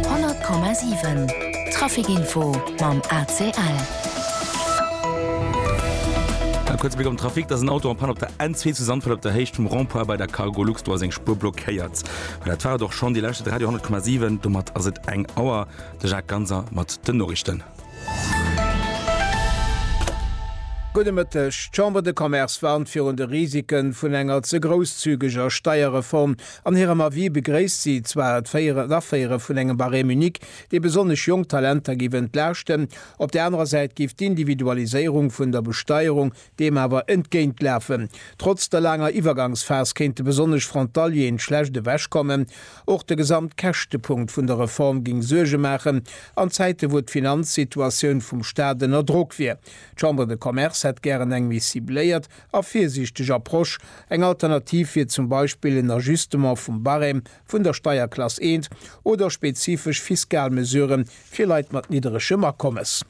100,7 Trafic Info mam ACL. Eng kuerz Bléck am Trafic, dass en Auto an Panne op der N2 zu Sandfeld op der Héicht vum Rond-point bei der Cargolux, do ass eng Spuer blockéiert. Mä dat war et och schonn, Dir lauschtert Radio 100,7, domat ass et eng Auer. De Jacques Ganser mat den Noriichten. Gudde Mëtteg. D'Chambre de Commerce warnt virun de Risike vun enger ze grousszügeger Steierreform, An hirem Avis begréisst si zwar d'Féieren, d'Aféiere vun engem Barème unique, dee besonnesch jonk Talenter géif entlaaschten. Op der anerer Säit géif d'Individualiséierung vun der Besteierung deem awer entgéintlafen. Trotz der laanger Iwwergangsphas kéinte besonnesch Frontalieren schlecht ewechkommen. Och de Gesamtkäschtepunkt vun der Reform géing Suerge maachen an Zäite wou d'Finanzsituatioun vum Staat ënner Drock wier. D'Chambre de Commerce hätt gären eng méi cibléiert a virsiichteg Approche, eng Alternativ wier zum Beispill en Ajustement vum Barème vun der Steierklass eent oder spezifesch fiskal Mesurë fir Leit mat nidderegem Akommes.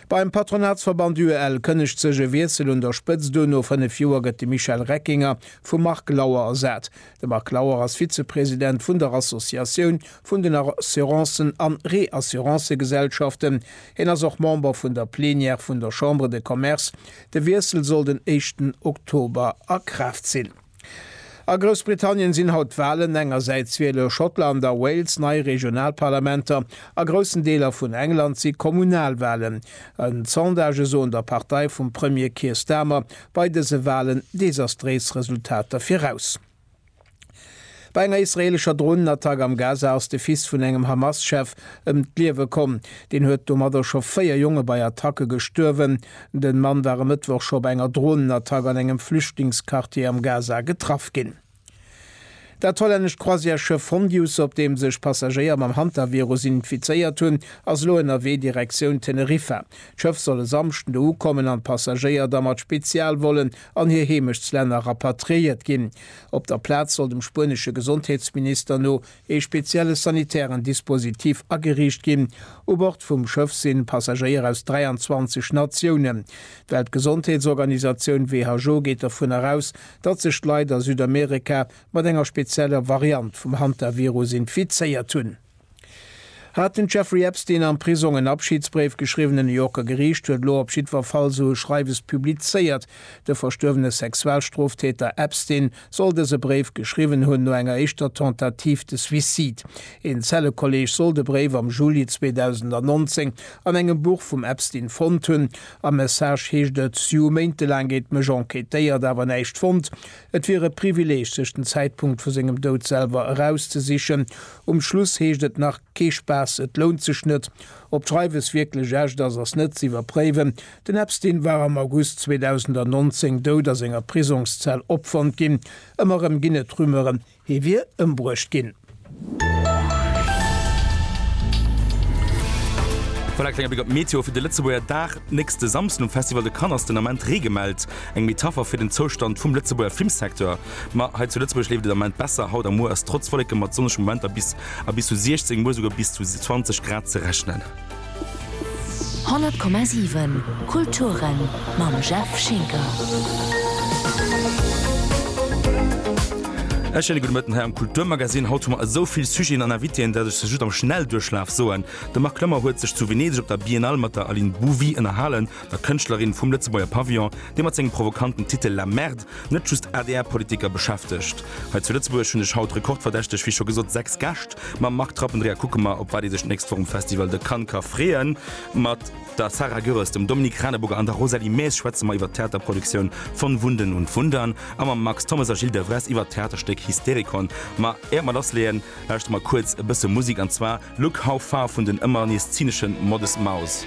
Beim Patronatsverband UEL kënnegt sech e Wiessel un der Spëtzt un, no 5 Joer gëtt de Michel Reckinger vum Marc Lauer ersat. De Marc Lauer ass Vizepresident vun der Associatioun vun den Assurancen an Reassurancëgesellschaften. Hien ass och Member vun der Plenière vun der Chambre de Commerce. De Wiessel soll den éischten Oktober a Kraaft sinn. A Groussbritannien sinn haut d'Walen. Engersäits wiele Schottland a Wales nei Regionalparlamenter. A groussen Deeler vun England si Kommunalwalen. D'Sondagë soen der Partei vum Premier Keir Starmer bei dëse Walen desastréis Resultater viraus. Bei enger israeelescher Dronenattack am Gaza ass de Fils vun engem Hamas-Chef ëm d'Liewe komm. Deen huet domadder scho véier Jonge bei Attacke gestuerwen. De Mann war e Mëttwoch scho bei enger Dronenattack an engem Flüchtlingsquartier am Gaza getraff ginn. Dat hollännescht Croisièresschëff Fondius, op deem sech Passagéier mam Hantavirus infizéiert hunn, ass elo ënnerwee Direktioun Teneriffa. D'Schëff soll e Samschden do ukommen an d'Passagéier da mat Spezialvollen an hir Heemechtslänner rapatriéiert ginn. Op der Plaz soll dem spuenesche Gesondheetsminister no ee spezielle sanitären Dispositif ageriicht ginn. U Bord vum Schëff si Passagéier aus 23 Natiounen. D'Weltgesondheetsorganisatioun WHO geet dovun eraus, datt sech d'Leit a Südamerika mat enger spezieller Variant vum Hantavirus infizéiert hunn. Hat den Jeffrey Epstein am Prisong en Abschiedsbréif geschriwwen? E New Yorker Geriicht huet elo op jiddwer Fall sou e Schreiwes publizéiert. De verstuerwene Sexualstroftäter Epstein soll dëse Bréif geschriwwen hunn no enger éischter Tentative de suicide. Een Zellekolleeg soll de Bréif am Juli 2019 an engem Buch vum Epstein fonnt hunn. Am Message heescht et, Sjoe Méinte laang gétt mech enquêtéiert, awer näischt fonnt. Et wier e Privileeg, sech den Zäitpunkt vu sengem Doud selwer erauszesichen. Um Schluss heescht et nach, Kee Spaass, et lount sech net. Ob d'Schreiwes wierklech echt ass, ass net ze iwwerpréiwen. Den Epstein war am August 2019 dout a senger Prisongszell opfonnt ginn. Ëmmer erëm ginn et Rumeuren, hie wier ëmbruecht ginn. Voilà, klenge Bléck op d'Meteo fir de Lëtzebuerger Dag. Nächste Samsden um Festival de Cannes ass den Ament Ree gemellt. Eng Metapher fir den Zoustand vum Lëtzebuerger Filmsecteur. Ma hei zu Lëtzebuerg leeft et am Moment besser. Haut a muer ass trotz Wolleke mat sonnege Momenter bis a bis zu 16, muer esouguer bis zu 20 Grad ze rechnen. 100,7 Kulturen mam Jeff Schinker. E schéine gudde Mëtten hei am Kulturmagazin. Haut hu mer esou vill Sujeten an Invitéen, dat ech se just am Schnellduerchlaf soen. De Marc Lömmer huet sech zu Venedeg op der Biennale mat der Aline Bouvy ënnerhalen. der Kënschtlerin vum Lëtzebuerger Pavillon, dee mat sengem provokanten Titel La Merde net just ADR-Politiker beschäftegt. Hei zu Lëtzebuerg hunn ech haut rekordverdächteg, wéi scho gesot, sechs Gäscht. Mam Marc Trappendreher kucke mer, op wat ee sech d'nächst Woch um Festival de Cannes ka freeën. Mat der Sarah Goeres, dem Dominique Radeburger an der Rosalie Maes schwätze mer iwwer d'Theaterproduktioun Von Wunden und Wundern a mam Max Thommes a Gilles Devresse iwwer d'Theaterstéck Hysterikon. Ma éiert mer lassleeën, lauschtere mer kuerz e bësse Musik, an zwar Look How Far vun den ëmmer nees zynesche Modest Mouse.